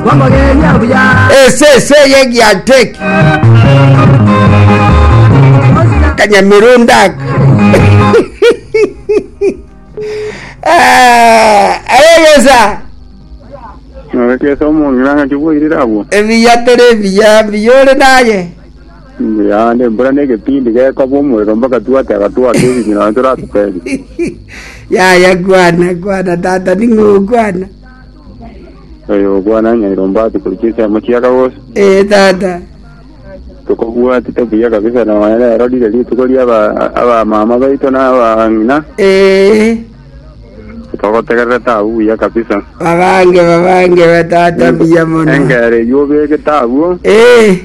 Kwamogenia buya. Esese y'egianteki. Kanyamirundak. Ayegesa. Nogekesa omong'ina ng'aki bwairire abwo. Ebiya teri ebiya biyore naye. Mbuya ne mbura ne gepindi gekaba omorero mpaka twate agatwaka ebinyi na toratuteri. Yaya kwana kwana tata ning'o kwana. Oyo okwana nyairomba ati kori chinsemo chiaka gose. Ee, tata. Tokobwatete buya kabisa nonya rero rire rituko ria aba- abamama baito na abang'ina. Ee, Togotegererete abwo buya kabisa. babange babange ba tata buya mono. Engere eyio obegete abwo. Ee,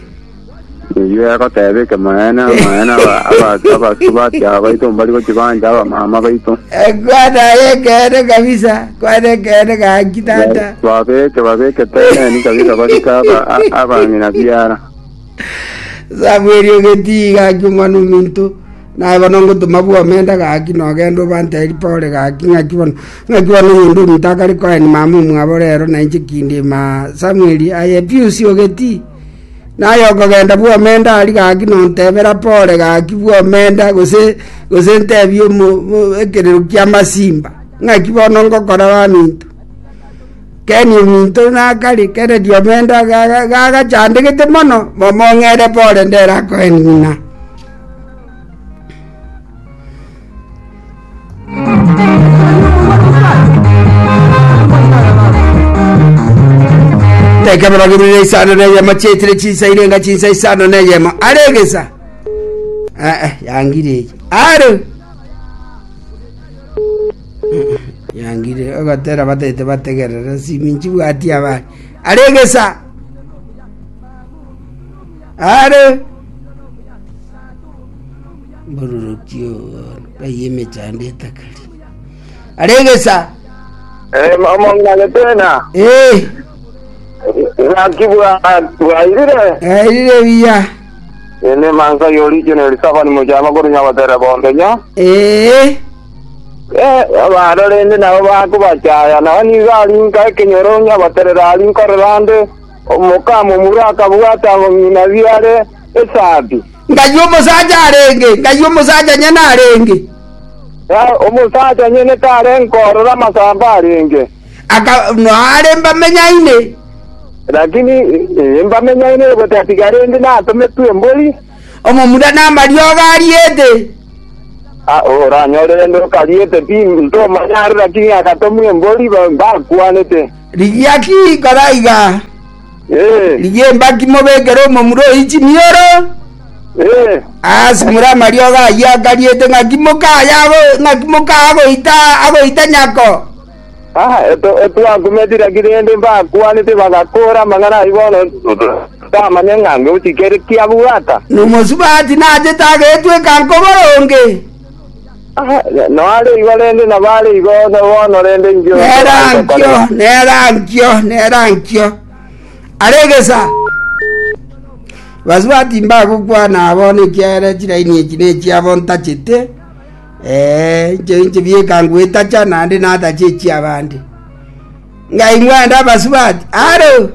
Eyio egoteba ekemonene, Amaene aba- aba- abasubati aba baito mbari gochibancha abamama baito. Eh, kwana aye ekeene kabisa kwana ekeene gaki tata Babeke babeke teneni kabisa barika aba- a- abang'ina biara. samweri ogetii gaki omwana ominto naye bono ngotoma bwa omenda gaki nogenda obanteri pore gaki ng'aki bono ng'aki bono omonto ominto akare koaeni mama omwabo rero nainche kindima samweri aye piusi ogetii Naye okogenda bw'omenda ari gaki nontebera pore gaki bw'omenda, gose gose ntebie ekerero ki'amasimba, ng'aki bono ngokora baminto. Keni ominto nakare kere ri'omenda gagachandegete mono, momo ng'ere pore nderakoe ng'ina. Ekero bagururire isano neyemo chiaitire chinsa ine nga chinsa isano neyemo are egesa Eh, eh, yangire eye are yangire ogotera batete bategerere siminchi bwati abaye are egesa are Mbororoki obo ng'ai emechando etakari are egesa. Eh, omong'inagete na Eh, gaki bwa- bwairire gairire biya. ene mansa yorikene risabani mochama kore nyabatere bombenya Eh, barorende nabo bakobachaya nao nigo arinka ekenyoro nyabaterera arinkorera ande omokamo mura akabwata ng'ina biare esabi. Ng'ai omosacha arenge? Ng'ai omosacha nyene arenge? Ng'ai omosacha nyene tarenge korora amasamba arenge? Aka, Nare mbamenyaine. Lakini eh, mbamenyaine gotatiga rende natometwe embori. Omomura namariogo ariete. Ah, oranyore rende okariete pi ntomanyare, lakini agatomwa embori ba- bakwanete. Rigia ki kora iga? Rigia embaki mobekere omomura oyio chimioro, asimure amariogo ayio akariete, ng'aki mokaya ago- ng'aki mokaa agoita agoita nyako. Twakumeti naki rende mbakwanete bagakoora amang'ana ayio bono tamanya ng'a ngochika ere kiabwata. Nomosubati nachete agetweka nkoboronge. Noare igo rende na bare igo bono rende inche onsi Nera aye nkio, tokorera. nera nkio, nera nkio. Aregesa. Basubati mbagokwana abo nekiagera chiraini echi nechiabo ntachete. Eh, inche inche bieka ngwetacha naende natache echiabande. Ngai mwenda basubati. Aro.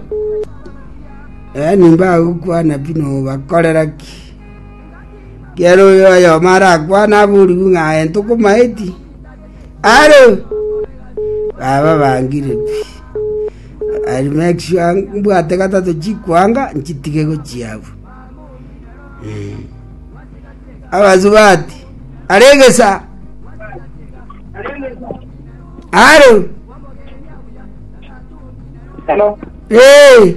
Eh, nimbagokwana bino bakorera ki? Ekiagera oyo oyomo arakwane aborigwe ng'a aye tokomaeti, are! Baba bangire pi, I'll make sure mbwate gatato chikoanga nchitige gochia abwo. Eh. Abasubati, are egesa, are! Hello. Eh!